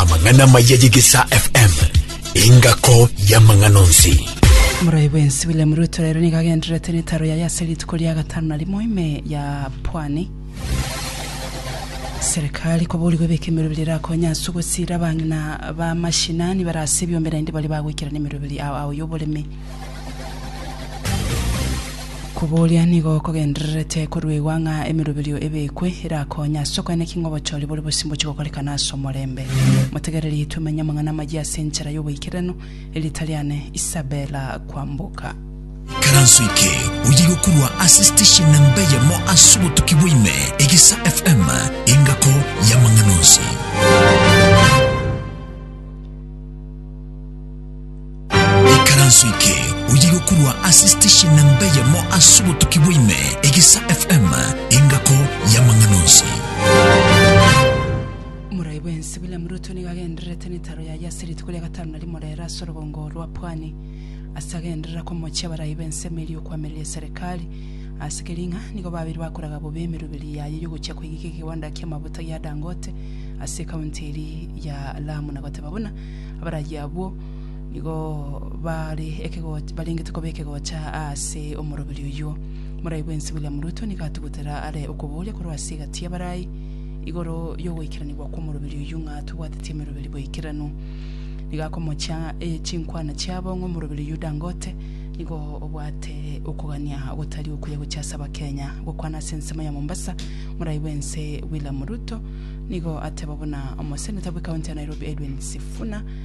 Amang'ana amaya y'egesaa FM. Engako y'amang'ana onsi. Omoroibw ensi William Ruto rero nigo agendererete netaro yaye ase rituko ria gatano na rimo ime ya pwani. Serikali koborigwe ebeke emeroberi erakonye ase ogosira abang'ina ba mashinani bare ase ebiombe naende baria bagoikera nemeroberi ao ao y'oboremi. Kobooria nigo kogendererete koruegwa ng'a emeroberio ebekwe erakonye ase okoeneki ng'a obochori bore bosio mbochie gokorekana ase omorembe. Motegereri tomenye amang'ana amayia ase enchera y'oboikeranu, Erieta riane Isabella Kwamboka. Karanso eke oye gokorwa ase station namba eyemo ase obotuki bwaime Egisa FM engako y'amang'ana onsi. Ekaranso eke oyiga korwa ase station namba eyemo ase obotuki bwa ime, Egesa FM, engako y'amang'ana onsi. Morai bwensi William Ruto nigo agendererete netaro yaye ase rituko ria gatano na rimo rere ase orogongo rwa Pwani ase agenderera komochia abarai b'ense emeeri y'okoamereria eserekari ase Kiringa nigo babire bakoraga bobe emeruberi yaye y'ogochia koigeka ekegonda kia mabuta gia Dangote ase ekaunti eria ya Lamu na goteba buna abaragi abwo nigo bare ekegocha barengete koba ekegocha ase omoroberi oyio. Morai bwensi William Ruto nigo atugutera are okoboria korwa ase egati y'abarai igoro y'ogoikeranigwa kw'omoroberi oyio ng'a tobwateti emeroberi boikeranu. Nigo akomochia eh, chinkwana chiabo ng'a omoroberi oyio Dangote nigo obwate okogania gotari okuya gochia ase Abakenya. Gokwana ase ensemo ya Mombasa, morai bwense William Ruto nigo ateba buna omoseneta bw'ekaunti ya Nairobi Edwin Sifuna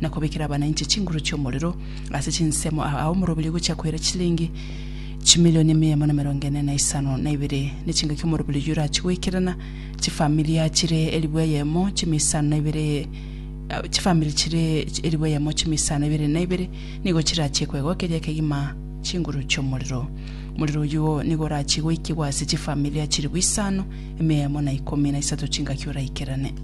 na kobekera abananche chinguru chi'omorero ase chinsemo aa omorobiri ogochia koira chilingi chimilioni mia emo na emerongo ene na isano na ibere, ne chingaki omorobiri oyio orachie goikerana chifamilia chire elifu eyemo chimia isano na ibere chifamiri chire elifu eyemo chimia isano ibere na ibere nigo chirachie koegwa keria kegima chinguru chi'omorero. Omorero oyio nigo orachie goikigwa ase chifamilia chilifu isano, emia eyemo na ikomi na isato chingaki oraikerane.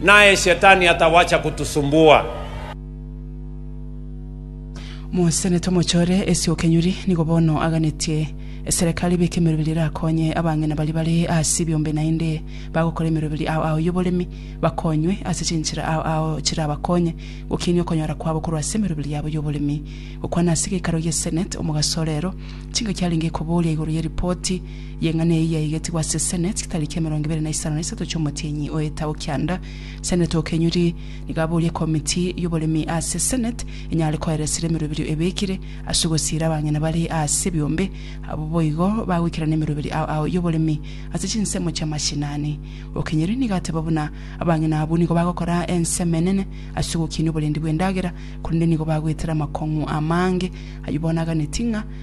Naye Shetani atawacha kutusumbua. Mosenete omochore ase okenyuri, nigo bono aganetie eserekari ebeke emeroberi erakonye abang'ina baria bare ase ebiombe naende bagokora emeroberi ao ao y'oboremi bakonywe ase chinchera ao ao chirabakonye gokinia okonyora kwabo korwa ase emeroberi yabo y'oboremi. Gokwana ase egeikaro gie Senate omogaso orero, chingaki arenge koboria igoro ye ripoti Y'eng'ana eyio yaigetigwe ase Seneti tariki emerongo ebere na isano na isato chi'omotienyi oeta o kianda. Seneti o Kenyuri nigo aborie ekomiti y'oboremi ase Seneti enyare koeresera emeroberio ebekire ase ogosiira abang'ina bare ase ebiombe abwo boigo bagoikerana emeroberio ao ao y'oboremi ase chinsemo chi'amashinani. O Kenyuri nigo ateba buna abang'ina abwo nigo bagokora ensemo enene ase ogokinia oborendi bw'endagera korende nigo bagwetera amakong'u amange ayio bono aganeti ng'a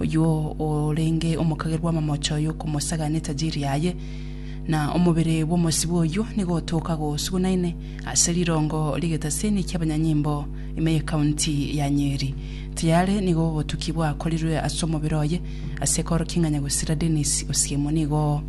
oyio orenge omokage bw'amamocho y'okomosaga netajiri yaye, na omobere bw'omosibwa oyio nigo otoka gosugunaine ase rirongo ri'egetaseni ki'abanyanyimbo ime y'ekaunti ya Nyeri. Tayari nigo obotuki bwakorirwe ase omobere oye ase ekorokia ng'a Nyagusira Dennis Osiemo nigo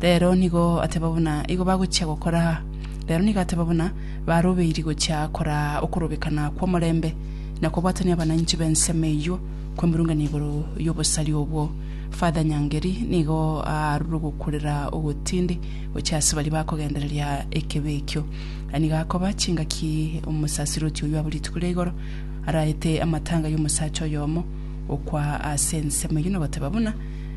Rero nigo ateba buna igo bagochia gokora, rero nigo ateba buna barobeiri gochia kora okorobekana kw'omorembe, na kobwatania abananchi b'ensemo eyio kw'emerungana igoro y'obosari obwo. Father Nyangeri nigo aarure ogokurera ogotindi gochia ase baria bakogendereria ekebe ekio. Aya nigo akoba chingaki omosaserdoti oyio abo rituko ria igoro araete amatanga y'omosacha oyomo okwa ase ensemo eyio na goteba buna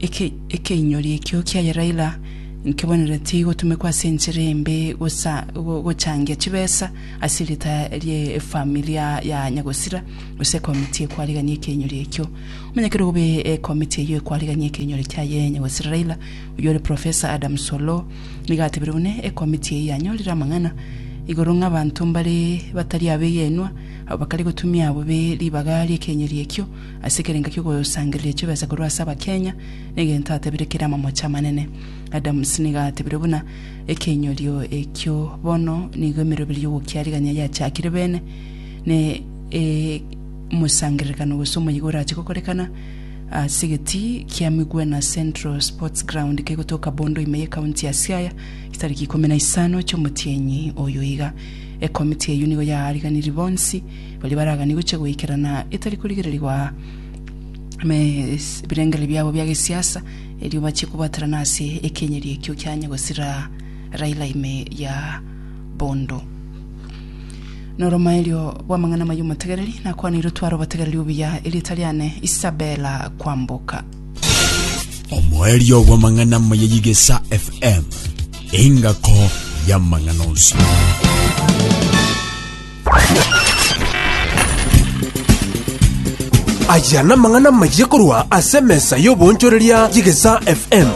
Ekeinyori ekio kia Yeraira nkebaneretie igotumekwa ase enchera embe gochangia chibesa ase erieta rie efamiri ya nyagosira gose ekomiti ekwarigania ekeinyori ekio. Onye kere obe ekomiti eyio ekwarigania ekeinyori kiaye nyagosira Raila oyio ore Professor Adams Oloo nigo atebire buna ekomiti eyio yanyorire amang'ana igoro ng'a abanto mbare batari abegenwa abwo bakare gotumia bobe ribaga riekeinyori ekio Ase ekerengo ki'ogosangereria chibesa korwa ase abakenya, negento atabire kere amamoche amanene. Adams nigo atebire buna, Ekeinyorio ekio bono nigo emeroberi y'ogokiarigania yachakire beene, ne omosangererekano gose omoyega orache gokorekana ase egeti kia Migwena Central Sports Ground kegotoka Bondo ime y'ecounty ya Siaya chitariki ikomi na isano chi'omotienyi oyo iga. Ekomiti eyio nigo yaariganirie bonsi baria baraganie gochia goikerana etari korigererigwa ime ebirengererio biabo bia gesiasa, erio bachie kobaterana ase ekenyeri ekio kianye gosira Raila ime ya bondo. Noromaerio bw'amang'ana amaya omotegereri, nakwaneire otware obotegereri obuya, erieta riane Isabella Kwamboka. Omoerio bw'amang'ana amaya y'Igesa FM, engako y'amang'ana onsi. Aya namang'ana amayia korwa ase emesa y'oboonchoreria y'Egesaa FM.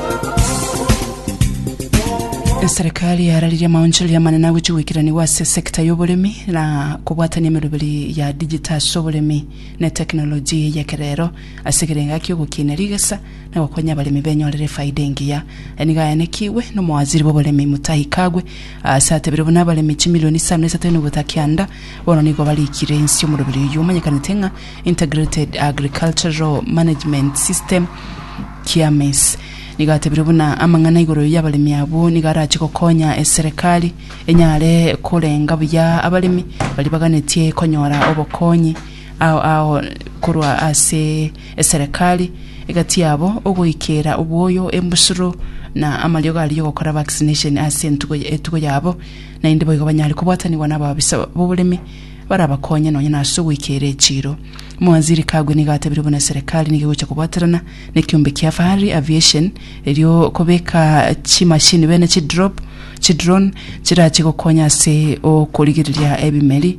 Eserekari yararirie amaonchoreria amanene agochia goikeranigwa ase sector y'oboremi na kobwatania emeroberi ya digital ase oboremi na eteknoloji y'ekerero ase ekerengo akia ogokinia rigesa na gokonya abaremi benyorere efaida engiya. Aya nigo ayanekigwe nomowaziri bw'oboremi Mutahi Kagwe Ase atebire buna abaremi chimilioni isano na isato enugutha kianda bono nigo barikire inse omoroberi oyio omanyekanete ng'a Integrated Agricultural Management System, TAMIS. Nigo atebire buna amang'ana igoro y'abaremi abwo nigo arache gokonya eserekari enyare korenga buya abaremi baria baganetie konyora obokonyi Ao ao korwa ase eserekari egati yabo ogoikera obwoyo embusuro na amariogo aria yogokora vaccination ase entugo etugo yabo naende boigo banyare kobwatanigwa na ababisa b'oboremi barabakonye nonya na ase ogoikera echiro Mwaziri Kagwe nigo atabire buna eserekari nigo egocha kobwaterana na ekiombe kia Fahari Aviation erio kobeka chimashini bene chidrop chidrone chirache gokonya ase okorigereria ebimeri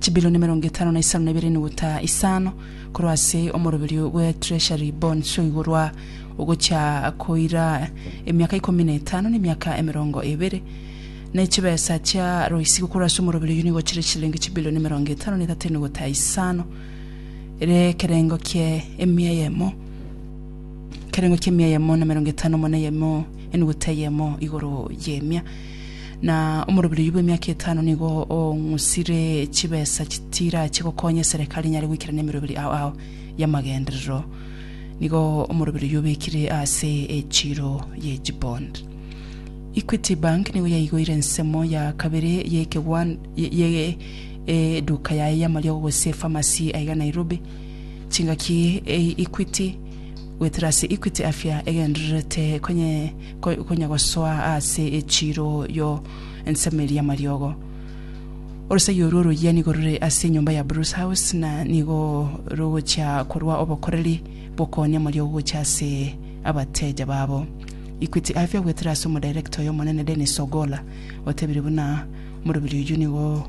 Chibilioni emerongo etano na isano na ibere enuguta isano korwa ase omoroberio bwe Treasury Bonds o igoro a ogochia koira emiaka ikomi na etano na emiaka emerongo ebere. Na chibesa chia roisigo korwa ase omoroberio oyio nigo chire chilingi chibilioni emerongo etano na etato enuguta isano ere ekerengo kie emia eyemo ekerengo kie emia eyemo na emerongo etano mo na eyemo enuguta eyemo igoro y'emia. Na omoroberi oyio bw'emiaka etano nigo ong'usire chibesa chitirache gokonya eserekari enyare goikerana emeroberi ao ao y'amagenderero. Nigo omoroberi oyio obekire ase echiro ye chibond. Equity Bank nigo yaigoire ensemo ya kabere y'ekegwan- ye- ye- eduka yaye y'amariogo gose efamasi aiga Nairobi. Chingaki e- Equity goetera ase Equity Afya egendererete konye konya gosoa aase echiiro yo ensemo eria y'amariogo. Orosegi orwo oroyia nigo rore ase enyomba ya Bruce House na nigo rogochia korwa obokoreri bw'okoonia amariogo gochia ase abateja babo. Equity Afya goetera ase omodirector oyo omonene Dennis Ogolla otebire buna, Omorobiri oyio nigo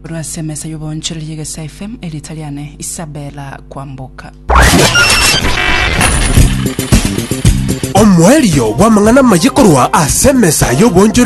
Korwa ase emesa y'oboonchoreria y'Egesaa FM, erieta riane Isabella Kwamboka. Omoerio bw'amang'ana amaye korwa ase emesa y'oboonchoreria